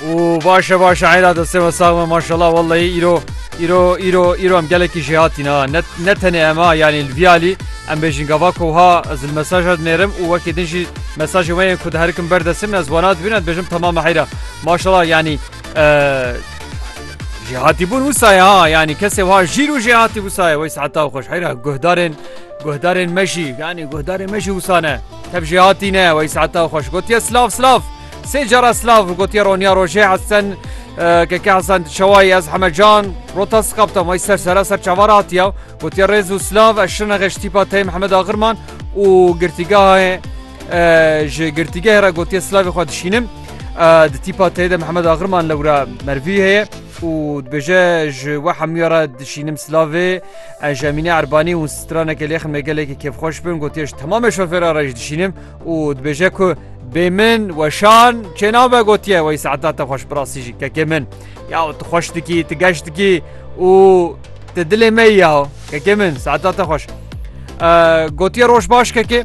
û baş e baş e heyla destê me sağ me maşallah wellahî îro îro îro îro em gelekî jê hatîn ha ne ne tenê em ha yanî li vî alî em bêjin gava ku ha ez li mesaja dinêrim û wekî din jî mesajê me yên ku diherikim ber destê min ez wana dibînim ez bêjim temame heyra maşallah yanî jê hatîbûn wisa ye ha yanî kesê ha jîr û jê hatî wisa ye wey seheta xweş heyra guhdarên guhdarên me jî yanî guhdarên me jî wisa ne Tev jî hatîne wey saeta xweş gotiye silav silav. Sê cara silav gotiye roniya rojê Hesen keke Hesen şewayê ez heme can rota siqaptem wey ser sera ser çavar hatiya gotiye rêz û silav ez şine xeş tîpa teyê Mihemed Axirman û girtîgahê ji girtîgehê re gotiye silavê xwe dişînim. Di tîpa teyê de Mihemed Axirman lewra mervî heye û dibêje ji we hemûya re dişînim silavê Ez Emîne Erbanî û stranekê lêxin me gelekî kêfxweş bin gotiye ji temamê şofêran re jî dişînim û dibêje ku bê min weşan çênabe gotiye wey saeta te xweş birastî jî kekê min ya tu xweş dikî tu geş dikî û te dilê me ya kekê min saeta te xweş gotiye roj baş kekê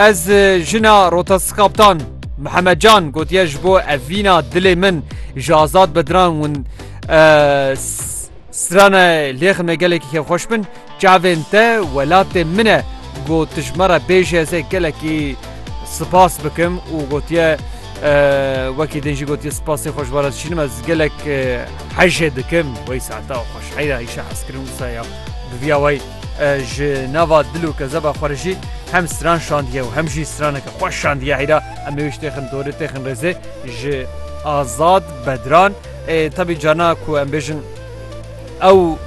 ez jina rotastkaptan Mihemed Can gotiye ji bo evîna dilê min ji azad bediran hûn Strana lêxime gelekî kêfxweş bin, çavên te welatê min e, got tu ji me re bêjî ez ê gelekî spas bikim û gotiye wekî din jî gotiye spasê xwe ji wan re dişînim ez gelek hejê dikim wey saeta xweş heyra îşa hezkirin wisa ya bi vîya wey ji nava dil û kezeba xwe re jî hem stran şandiye û hem jî straneke xweş şandiye heyra em ê wê ji têxin dorê têxin rêzê ji Azad Bedran. Tevî carna ku em bêjin ew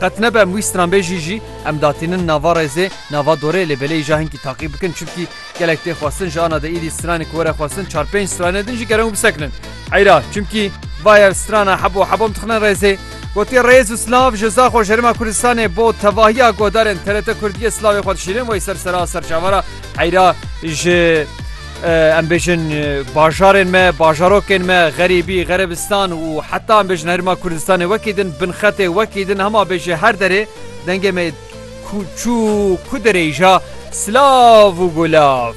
qet nebe em wî stranbêjî jî em datînin nava rêzê nava dorê lê belê îja hinkî taqî bikin çimkî gelek tê xwestin ji ana de îdî stranê ku were xwestin çar pênc stranê din jî gere û bisekinin eyra çimkî vaya strana hebo hebom dixine rêzê Gotî rêz û slav ji za xwe jerima Kurdistanê bo tevahiya godarên TRT Kurdiyê slavê xwe dişînin wey ser sera serçavara eyra ji Em bêjin bajarên me, bajarokên me, xerîbî, xerebistan û heta em bêjin herêma Kurdistanê wekî din, binxetê wekî din, hema bêjê her derê dengê me çû ku derêja silav û gulav.